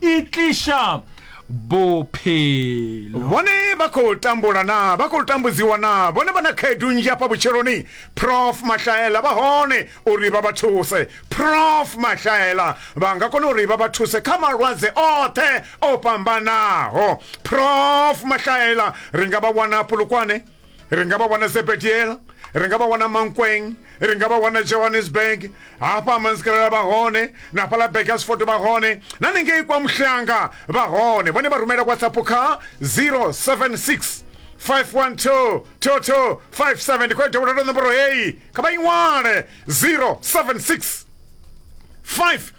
e tliša bophelo bone ba khou tambula na ba khou tambudziwa na bone vha na khaedu nnzhi afha vhutshiloni prof mahlaela vha hone uri vha vha thuse prof mahlaela vha nga kona uri vha vha thuse kha malwadze oṱhe o fhambanaho prof mahlaela ri nga vha wana pulukwane ri nga vha wana sebetiela ri nga vha wana mankweng ri nga vha wana johannesburg hafha amanzikalala vha hone na fhaḽa bakersford vha hone na ningei kwa muhlanga vha hone vhone vha rumela whatsapp kha 076 512 toto 57 ndi khou ya dovholola nomboro heyi kha vha i ṅwale 076 5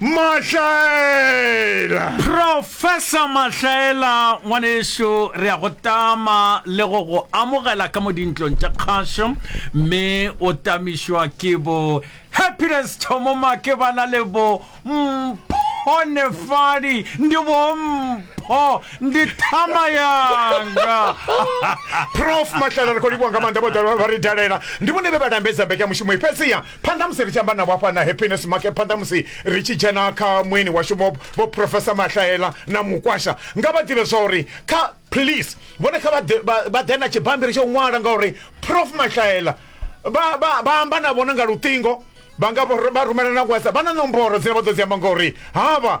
mahlaela professor mahlaela ngwaneso re ya go tama le go go amogela ka mo dintlong tša kgašo mme o tamišwa ke bo happiness thomo make ba na le bo mphonefadi ndi bo mpho ndi thama yanga prof mahlaela ri khou livhuwa nga maanḓa vhoḓa vha ri dalela ndi vhone vhe vha lambedza mbekanyamushumo i fhedziha phanḓa musi ri tshi amba navho hafha na happiness make phanḓa musi ri tshi dzhena kha mueni washu vho vho professor mahlaela na mukwasha nga vha ḓivhe zwa uri kha please vhone kha vha ḓe na tshibammbiri tsho ṅwala ngauri prof mahlaela vha amba na vhona nga luṱingo vha nga vha rumela na whatsapp vha na nomboro dzine vha ḓo dzi amba ngauri havha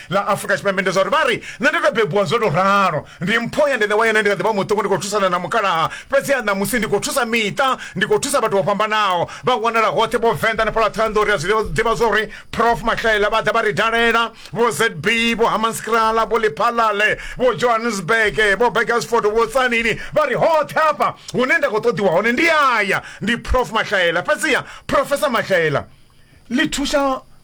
ḽa afrika tshipembe ndi zwa uri vha ri nṋe ndo tou bebiwa zwo tou ralo ndi mpho ya ndende wa yone ndi kha ḓi vha muṱuku ndi khou thusana na mukalaha fhedziha ṋamusi ndi khou thusa miṱa ndi khou thusa vhathu vho fhambanaho vha wanala hoṱhe vho venḓa na fhaḽa ṱhohoyanḓou ri a zwi ḓivha zwa uri prof mahlaela vha ḓa vha ri dalela vho zb vho hamanskrala vho liphalale vho johannesburg vho begersford vho tsanini vha ri hoṱhe hafha hune nda khou ṱoḓiwa hone ndi aya ndi prof mahlaela fhedziha profesa mahlaela ḽi thusa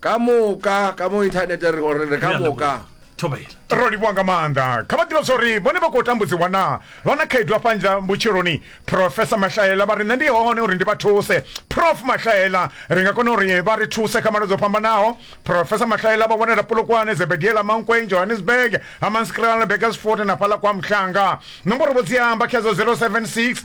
ka moka ka mo inthanete re gore re ka moka thobela ro livhuwa nga maanḓa kha vha ḓivha zwori vhone vha khou tambudziwa naa vha na khaedu afha nzha vhutshiloni profesa mahlaela vha ri nṋe ndi hone uri ndi vha thuse prof mahlaela ri nga kona uri vha ri thuse kha malwadze o fhambanaho profesa mahlaela vha wanela polokwane zebediela mankweng johannesburg hamanskralne bakersfort na fhaḽa kwa mhlanga nomboro vho dzi amba khedzo 076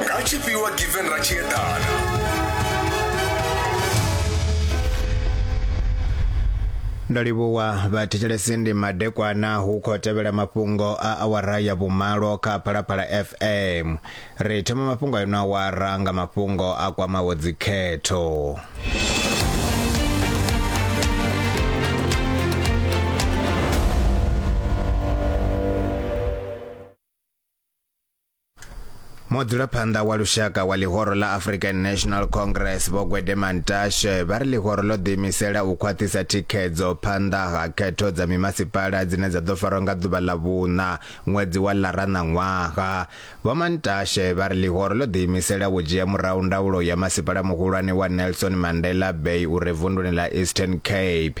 ratshifhiwa given ratshiedana ndo livhuwa vhathetshelesi ndi madekwana hu khou tevhela mafhungo a awara ya vhumalo kha phalaphala fm ri thoma mafhungo a ino awara nga mafhungo a kwamaho dzikhetho mudzulaphanḓa wa lushaka wa ḽihoro ḽa african national congress vho gwede mantashe vha ri ḽihoro ḽo ḓiimisela u khwaṱhisa thikhedzo phanḓa ha khetho dza mimasipala dzine dza ḓo farwa nga ḓuvha ḽa vhuṋa ṅwedzi wa ḽara na ṅwaha vho mantashe vha ri ḽihoro ḽo ḓiimisela u dzhia murahu ndaulo ya masipala muhulwane wa nelson mandela bay u re vunduni ḽa eastern cape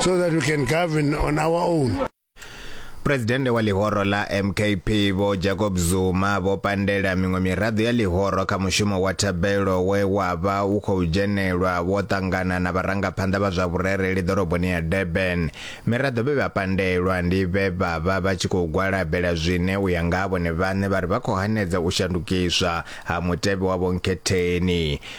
so that we can govern on our own. Presidente wa ḽihoro ḽa MKP vho Jacob Zuma vho pandela miṅwe miraḓo ya ḽihoro kha mushumo wa thabelo we wa vha u khou dzhenelwa vho ṱangana na vharangaphanḓa vha zwa vhurereli ḓoroboni ya Durban. Miraḓo vhe vha pandelwa ndi vhe vha vha vha tshi khou gwalabela zwine u ya nga ha vhone vhaṋe vha ri vha khou hanedza u shandukiswa ha mutevhe wa vhonkhetheni.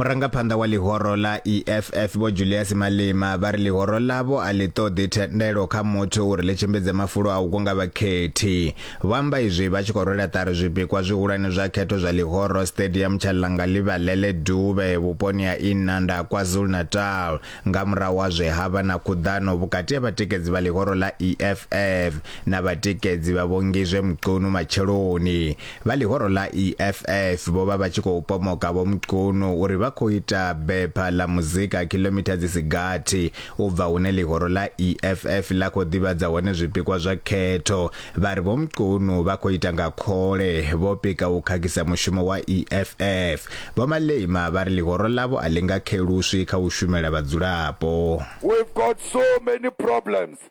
Murangaphanḓa wa ḽihoro ḽa EFF Vho Julius Malema vha ri ḽihoro ḽavho a ḽi ṱoḓi thendelo kha muthu uri ḽi tshimbidze mafulo a u kunga vhakhethi. Vho amba izwi vha tshi khou rwela ṱari zwipikwa zwihulwane zwa khetho zwa ḽihoro Stadium tsha Langalibalele Dube vhuponi ha Inanda KwaZulu-Natal nga murahu ha zwe ha vha na khuḓano vhukati ha vhatikedzi vha ḽihoro ḽa EFF na vhatikedzi vha Vho Ngizwe Mchunu matsheloni. Vha ḽihoro ḽa EFF vho vha vha tshi khou pomoka Vho Mchunu uri vha khou ita bepha ḽa muzika khiḽomitha dzi si gathi u bva hune ḽihoro ḽa EFF ḽa khou ḓivhadza hone zwipikwa zwa khetho. Vha ri Vho Mchunu vha khou ita nga khole, vho pika u khakhisa mushumo wa EFF. Vho Malema vha ri ḽihoro ḽavho a ḽi nga kheluswi kha u shumela vhadzulapo. We've got so many problems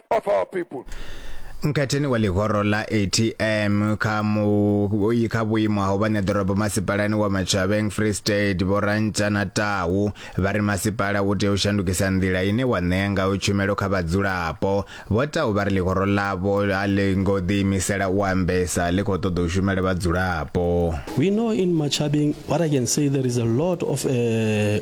of our people mkhatheni wa ḽihoro ḽa atm kha muyi kha vhuimo ha u vha ṋeḓorobo masipalani wa machaveng free state vhorantsha na tahu vha ri masipala u tea u shandukisa nḓila ine wa ṋea ngayo tshumelo kha vhadzulapo vho tahu vha ri ḽihoro ḽavho a ḽi ngo ḓiimisela u ambesa ḽi khou ṱoḓa u shumela vhadzulapo we know in machabeng what i can say there is a lot of uh,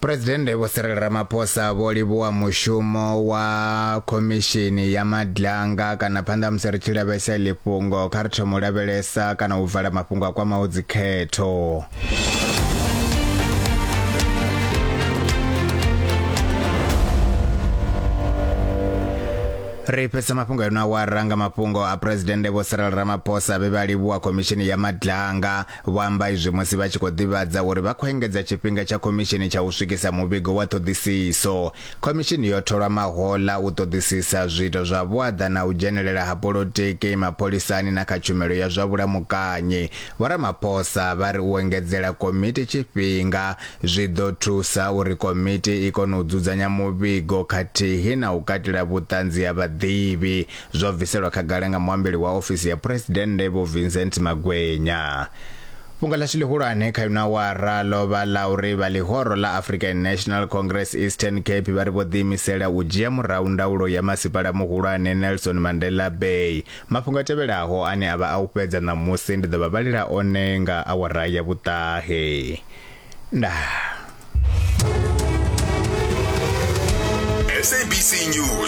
Presidennde Vho Cyril Ramaphosa vho livhuwa mushumo wa khomishini ya madlanga kana phanḓa musi ri tshi lavhelesa ḽi fhungo kha ri thoma u lavhelesa kana u vala mafhungo a kwamaho dzikhetho ri fhedza mafhungo yo no awara nga mafhungo a presidennde vho Cyril Ramaphosa vhe vha livhuwa khomishini ya madlanga Vho amba izwi musi vha tshi khou ḓivhadza uri vha khou engedza tshifhinga tsha khomishini tsha u swikisa muvhigo wa ṱhoḓisiso. Khomishini yo tholwa mahoḽa u ṱoḓisisa zwiito zwa vhuaḓa na u dzhenelela ha polotiki, mapholisani na kha tshumelo ya zwa vhulamukanyi. Vho Ramaphosa vha ri u engedzela komiti tshifhinga zwi ḓo thusa uri komiti i kone u dzudzanya muvhigo khathihi na u katela vhuṱanzi ha vhaḓivhi zwo bviselwa khagala nga muambeli wa ofisi ya phuresidennde vho Vincent Magwenya Fhungo ḽashu ḽihulwane kha yuna wara ḽo vha ḽa uri vha ḽihoro ḽa African National Congress Eastern Cape vha ri vho ḓiimisela u dzhia murahu ndaulo ya masipala muhulwane Nelson Mandela Bay mafhungo a tevhelaho ane a vha a u fhedza ṋamusi ndi ḓo vha vhalela one nga awara ya vhuṱahe ndaa SABC News